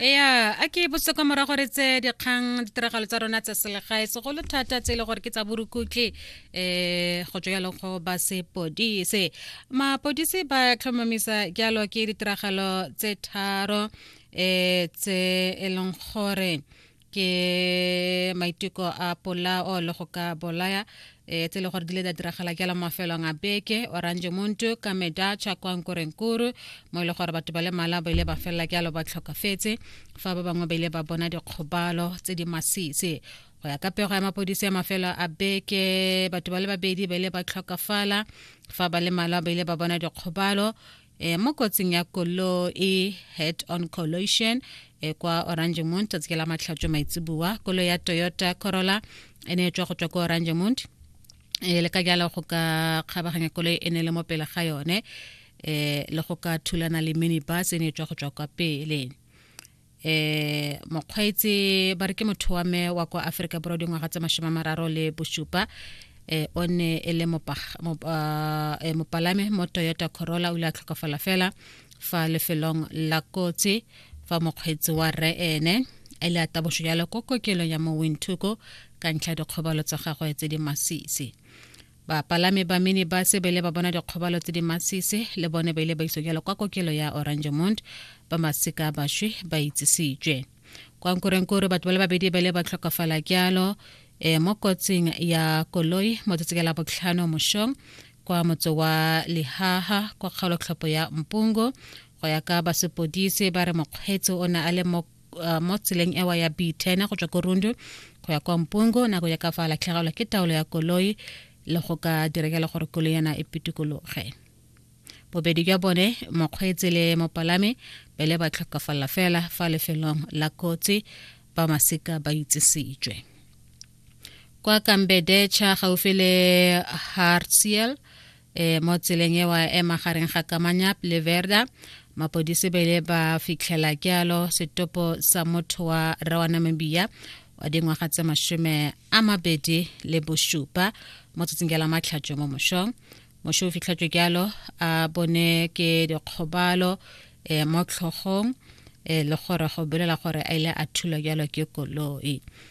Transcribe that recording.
ya a ke botse kwa morago re tse dikgang ditiragalo tsa rona tsa selegae segolo thata tse e le gore ke tsa borukutlhi um go tswa jalo go ba sepodise mapodise ba tlhomamisa jalo ke ditiragalo tse tharo um tse e leng gore ke maiteko a polao le go ka bolaya e tse le gore di le da diragala jalo mafelong a beke orange muntu kameda chakwankorenkuru mo e le gore batho ba le mala ba ile ba felela jalo ba tlhokafetse fa ba bangwe ba ile ba bona dikgobalo tse di masisi go ya ka pego ya mapodisi ya mafelo a beke batho ba le babedi ba ile ba tlhokafala fa ba le malwa ba ile ba bona dikgobalo e, mo kotsing ya koloi e head on collision e kwa orangemont tsatsi ke la matlhatso maitseboa koloi ya toyota corolla e ne e tswa go tswa kwa orangemont e le ka jalo go ka kgabaganya koloi e ne le mo pele ga yone um le go ka thulana le minibus e ne e tswa go tswa kwa pele eh mokgweetsi ba re ke motho wa me wa kwa aforika borwa dingwaga tse mashome mararo le bosupa eh o ne e le ah, eh, mopalame mo toyota corolla o ile a tlhokafala fela fa lefelong la kotsi fa mokgweetsi wa rre ene a ile a taboso jalo ko kokelong ya mo wintuko ka ntlha dikgobalo tsa gagwe tse di masisi Bapalami ba minibase ba ile ba bona dikgobalo tse di masisi le bone ba ile ba iso jalo kwa kokelo ya Oranjemund ba masika baswi ba itsisitswe. Kwa Nkurenkure batho ba le babedi ba ile ba tlhokafala jalo e mo kotsing ya koloi mo tsatsi la botlhano moshong kwa motse wa Lihaha kwa kgaolotlhopho ya Mpungo go ya ka basepodise ba re mokgweetsi o ne a le mo uh, mo tseleng ewa ya b10 go tswa ko rundu go ya kwa mpungo nako ya ka fa latlhegelwa ke taolo ya koloi le go ka diregela gore koloi yana e pitikologe bobedi jwa bone mokgweetsi le mopalami pele ba tlhokafalela fela fa lefelong la kotsi ba masika ba itsisitswe kwa kambedecha gaufi le hartsiel e mo tseleng ewa e magareng ga kamanyap le verda mapodisi ba ile ba fitlhela kealo setopo sa motho wa rra wa namibia wa dingwaga tse mashome a mabedi le bosupa mo tsatsing ke la matlhatso mo mošong mošo o fitlhatso kealo a bone ke dikgobalo um mo tlhogong um le gore go bolela gore a ile a thulwa kealo ke koloi